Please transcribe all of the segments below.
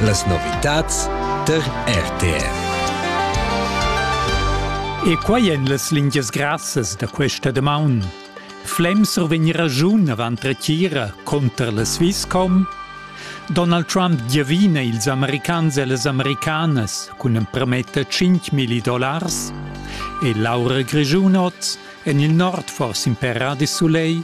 Las novitads tar RTR. E quai èn las lingias grassas da questa damaun. Flem survegn ragiun avant retira conter la Swisscom. Donald Trump giavina ils americans e las americanas cun emprometta 5.000 dollars e Laura Grischun oz en il nord forse in per de soleil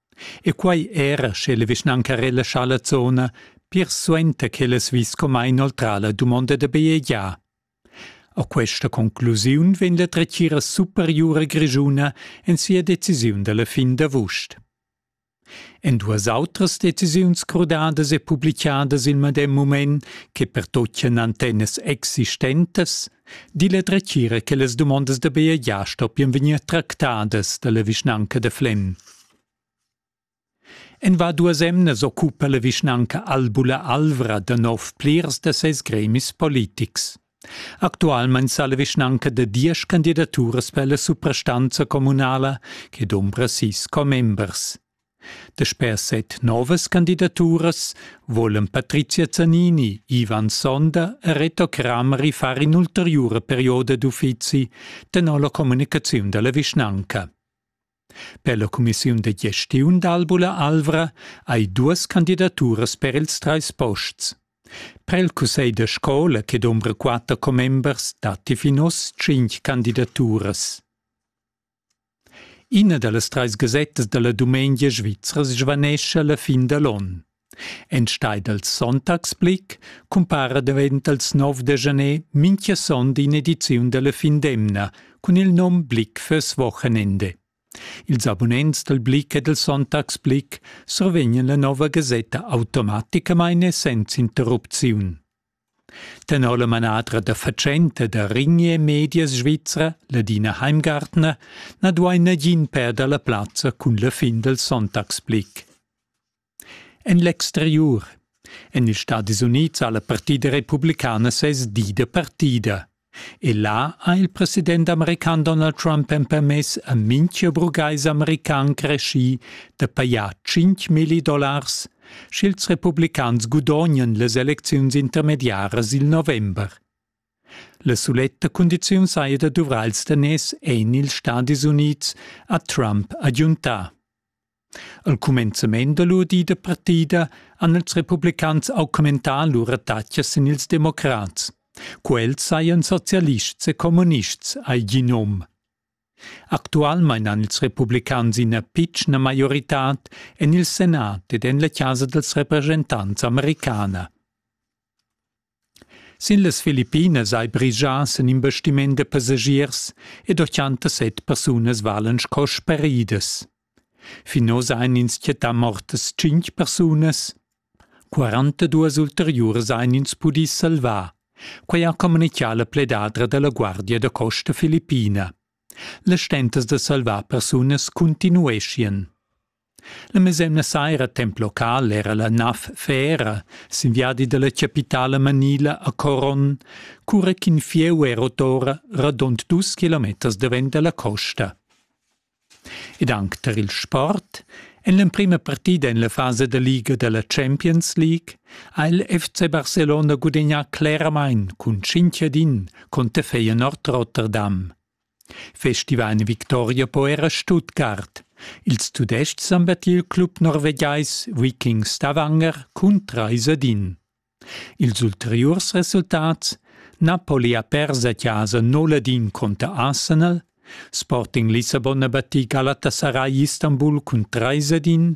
E quai era sche la vischnanca relascha la zona pir suenter ch'el es vis comma inoltrà la dumonda da bajegiar. A questa conclusiun vegn la dretgira superiura grischuna en sia decisiun da la fin d'avust. En duas autras decisiuns crudadas e publicadas il medem mument che pertocchian antennas existentas, Dil e dretgira che las dumondas da BEA stoppian vegnir tractadas dalla vischnanca da Flem. En va duas emnas occupa la vischnanca Albula Alvra da nov plirs da ses gremis politics. Actualmein sa la vischnanca da diesch candidaturas per la suprastanza communala che dombra sis commembers. Dasper set novas candidaturas volan Patrizia Zanini, Ivan Sonder e Reto Crameri far in'ulteriura perioda d'uffizi tenor la communicaziun dalla vischnanca. Per la cumissiun da gestiun d'Albula Alvra hai duas candidaturas per ils treis posts. Per il cussegl da scola che dombra quatter commembers datti fin oz tschintg candidaturas. Ina da las trais gasettas da la dumengia svizra svanescha la fin da l'onn. Enstagl dal Sonntagsblick cumpara davent dals 9 da januar mintga sonda in'ediziun da la fin d'emna cun il nom Blick fürs Wochenende. Ils abunents dal Blick e dal Sonntagsblick survegnan la nova gasetta automaticamain e senza interrupziun. Tenor la manadra da fatschenta da Rigne Medias Svizra, Ladina Heimgartner, na duai nagin perder la plazza cun la fin dal sonntagsblick. En l'exteriur. En ils Stadis Unids ha la partida republicana ses di da partida. E là ha il president american Donald Trump empermess a mintga burgais american creschì da pajar tschintmilli dollars, sch'ils republicans gudognan las elecziuns intermediaras il november. La suletta cundiziun saja da duvrar il daners en ils Stadis Unids, ha Trump agiuntà. Al cumenzament da lur di da partida han ils republicans auch commentà lur attacks sin ils democrats. Quels sajan socialists e kommunists, hai gi num. Actualmein han ils republicans ina pitschna maioritad en il Senat ed en la Casa dels Representants americana. Sin las Filippinas ei brigia sin investiment da passagiers ed 87 persunas valan sco sparidas. Fin oz ein ins quietà mortas tschintg persunas. 42 ulteriuras ein ins pudì salvar. Quei ha communicà la pledadra dalla Guardia da costa filippina. Le stentas da salvar persunas continueschien. La mesemna saira temp local era la nav Fera sin viadi dalla capitala manila a Coron, cura ch'in fieu è rot ora radund dus kilometers davent dalla costa. Ed anc tar il sport en l'emprima partida en la fasa da liga da la Champions League ha il FC Barcelona gudagnà cleramain cun 5 ad 1 conter Feyenoord Rotterdam. Festival Victoria po era Stuttgart. Ils Tudestgs han battiu il club norvegiais Vikings Stavanger cun trais ad in. Ils ulteriurs resultats Napoli ha pers a casa 0 ad in conter Arsenal, Sporting Lissabon ha batì Galatasaray Istanbul cun trais ad in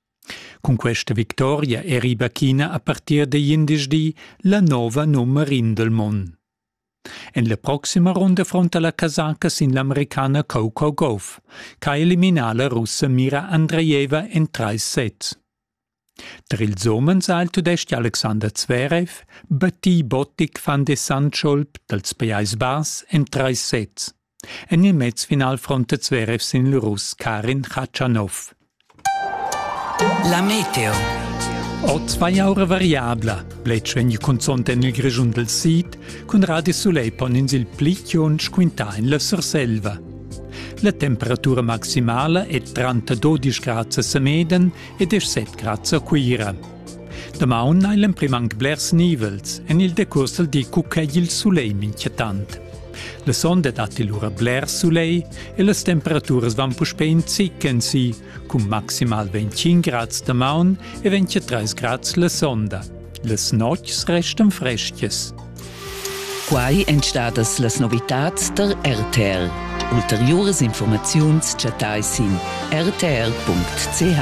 Cun questa victoria eri Bacchina a partir digl indisdi la nova nummer in del mond. En la proxima runda fronta la casaca sin l'americana Coco Gauff, che ha eliminà la russa Mira Andreeva en trais sets. Tar ils umens ha il tudestg Alexander Zverev battì Bottic van de Sandscholp dals Pajais Bass en trais sets. En il mezfinal frontet Zverev sin il Russ Karin Khachanov. La meteo. Oz vai aura variabla. Bletsch vegn cunzont en il Grischun del Sid, cun Radio Soleil pon ins il pli chiunsch quintà in la Surselva. La temperatura maximala è trenta 12 grad a Semeden e 17 grad a Cuira. Damaun hai l'emprim anc blers nivels, en il decurs dal di cucca il sulegl inquietant. La sonda datti lura bler sulegl e las temperaturas van puspè in zicken si, cun maximal 25 grads damaun e 23 grads la sonda. Las notgs restan fresches. Quai èn stadas las novitads der RTL. Ulteriuras informaziuns chattai sin rtl.ch.